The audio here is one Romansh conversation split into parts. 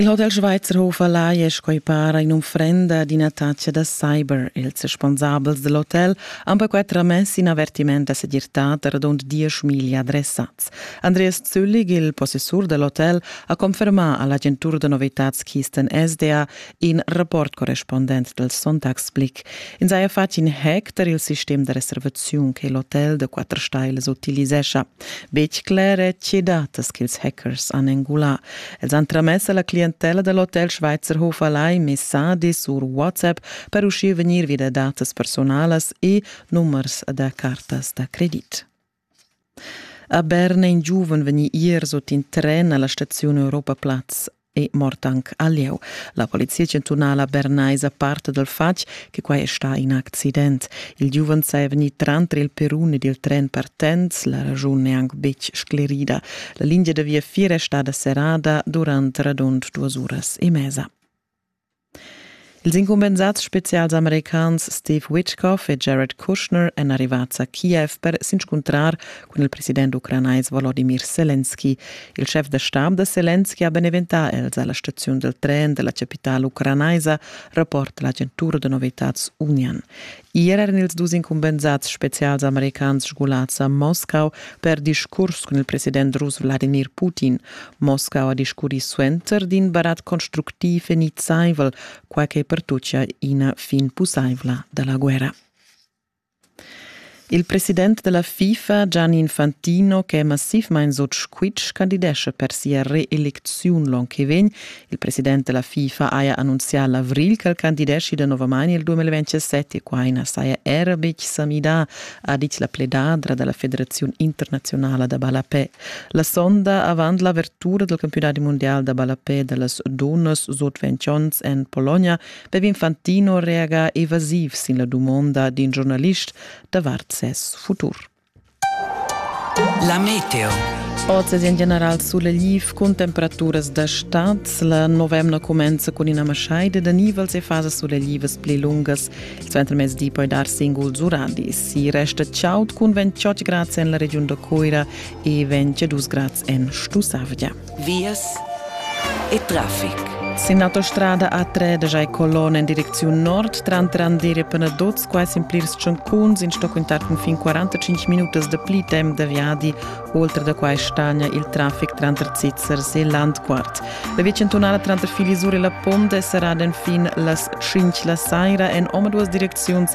Il Hotel Schweizerhof Alai è sco para un'unfrenda d'ina taccia da cyber. Ils responsabels del hotel han perquai tramess in avertiment da segirtad radund dieschmilli adressats. Andreas Züllig, il possessur del hotel, ha confermà all'agentur da novitads Kisten SDA in rapport correspondent del Sonntagsblick in saja fatg in hack der il sistem de reservaziun che l'hotel de quatter stailas utilisescha. Betg clare tge datas ch'ils hackers han engulà. Els han tramess alla clientella del Hotel Schweizerhof Alai messages sur WhatsApp per uschia vegnir via datas personalas e numers da cartas da credit. A Berna è in giuven vegnì ier sut in tren a la staziun Europa Platz è mort anc a lieu. La polizia chantunala bernaisa parta dal fatg che quai è stà in accident. Il giuven saja vegnì tranter il perun ed il tren partents, la raschun è anc betg sclerida. La lingia da viafier è stada serrada durant radund duas uras e mesa. Ils incumbensats spezials americans Steve Witkoff e Jared Kushner èn arrivads a Kiev per s'inscuntrar cun il president ucranais Volodimir Selenski. Il schef da stab da Selenski ha beneventà els a la staziun dal tren da la chapitala ucranaisa, rapport da l'agentura da novitads Union. Ier eran ils dus incumbensads spezials americans sgulads a Moscau per discurs cun il president rus Vladimir Putin. Moscau ha discurrì suenter d'in barat constructiv e nizzaivel, quai che pertuccia ina fin pussaivla da la guerra. Il president della FIFA Gianni Infantino, che è massivmain sut squitsch, candidesce per sia reelecziun l'onn che vegn Il president della FIFA haja annunzià l'avril ch'el candideschi danovamain il 2027 e quai na saja era betg sa midà, ha ditg la pledadra da la Federaziun internaziunala da ballapè. La sonda avant l'avertura del campionati mondial da ballapè da las dunnas sut 20 onns en Polonia bev Infantino reaga evasiv sin la dumonda d'in giornalist davart ses futur. La meteo. Oz è en general suleliv cun temperaturas da stad. La novemna cumenza cun ina maschaida da nivels e fasas sulelivas pli lungas. Suenter mezdi poi dar singuls uradis. Si resta chaud cun 28 grads en la regiun da Coira e 22 grads en Stussavgia. vias e traffic. Sin autostrada A3 da Jai Colonna in direcziun nord, tranter Andere e Penaduz, quai sin plirs tschuncuns in sto quintar fin 45 minutas da pli temp da viadi. Oltre da quai stagna il traffic tranter Zizzers e Landquart. La via centunala tranter Filisur e la Ponda è serrada enfin las 5 la saira en omaduas direcziuns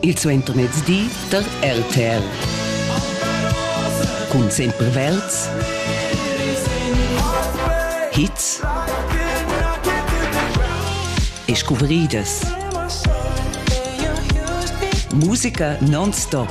Il suentermezdi da RTL. Cun sempre Welz. Hits e scuvrìdas. Musica non-stop.